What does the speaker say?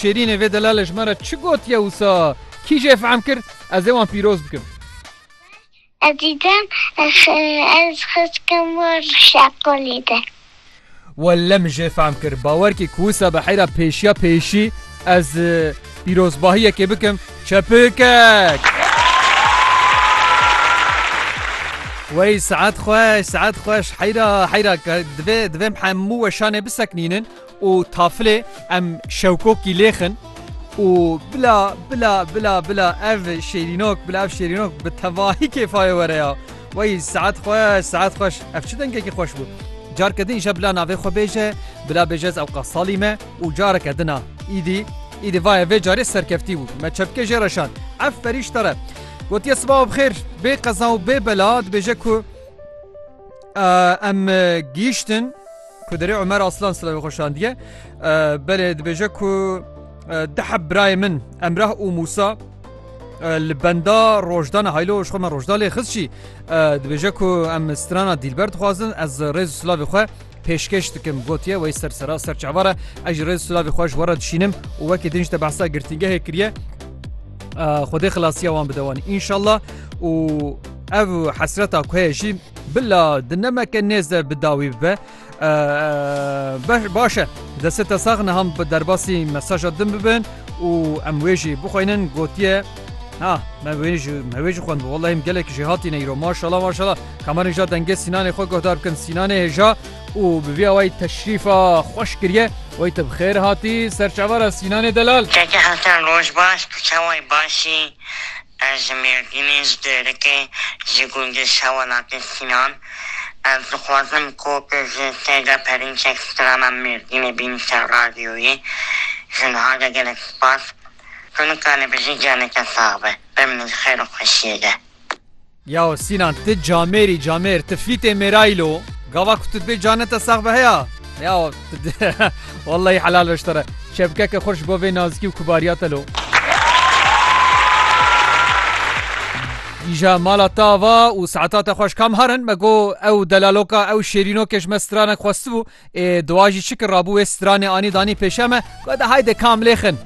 Şêrînê vê delalê ji me re çi gotiye wisa? Kî jê fehm kir? Ez ê wan pîroz bikim. Ez dîtim ez xiskim wir şeqolê de. Welle min jê fehm kir. Bawer kî ku wisa bi heyra pêşiya pêşî ez pîrozbahiyekê bikim. Çepikek! Wey saet xweş, saet xweş. Heyra, heyra. Divê, divê em hemû weşanê biseknînin. û tafilê em şewkokî lêxin û bila bila bila bila ev şêrînok bila ev şêrînok bi tevahî kêfayê were ya. Wey saet xweş saet xweş ev çi dengekî xweş bû. Careke din îşa bila navê xwe bêje bila bêje ez ewqa salî me û careke din a îdî îdî vaye vê carê serkeftî bû me çepkê jê re şand ev perîşte re gotiye sibawa bi xêr bê qeza û bê bela dibêje ku Em gihîştin ku derê Umer Aslan silavê xwe şandiye. Belê dibêje ku diheb birayê min Emrah û Musa li benda rojdana haylo ji xwe me rojda lê xist jî dibêje ku em strana dîlber dixwazin ez rêz silavê xwe Pêşkêş dikim gotiye wey ser sera ser çavar e ez ji rêz silavê xwe ji we re dişînim û wekî din ji te behsa girtîngehê kiriye Xwedê xilasiya wan bide wan înşallah û ev hesreta ku heye jî bila di nemeke nêze bi dawî bibe baş e deste te sax niham bi derbasî mesaja din bibin û em wê jî bixwînin gotiye Na, me wê jî me wê jî xwendibû. Wellahî em gelekî jê hatîne îro. Maşala maşala. Kamerên ja dengê Sînanê xwe guhdar bikin. Sînanê hêja û bi vî awayî teşrîfa xweş kiriye. Wayî te bi xêr hatî ser çavara Sînanê Delal. Keke Hesen roj baş, tu çawayî baş î? Ez ji Mêrdînê, ji Dêrikê, ji gundê Şewelatê Sînan. Ez dixwazim ku tu ji te de perinçek strana Mêrdînê bînî ser radyoyê. Ji niha de gelek spas. Ku nikare bijî giyaneke sax be. Bimnî di xeyr û xweşiyê de. Yao Sînan ti camêrî camêr ti fîtê mêraylo. Gava ku tu dibê cane te sax be heya? Yao tu dê wellahî helal be ji te re. Çepkeke xurt ji bo vê nazikî û kibariya te lo. Îja mala te ava û saeta te xweş kam harin? Me got ew delaloka ew şêrînokê ji me stranek xwestibû. Ê dowa jî çi kir rabû wê stranê anî danî pêşe me, gote haydi kam lêxin.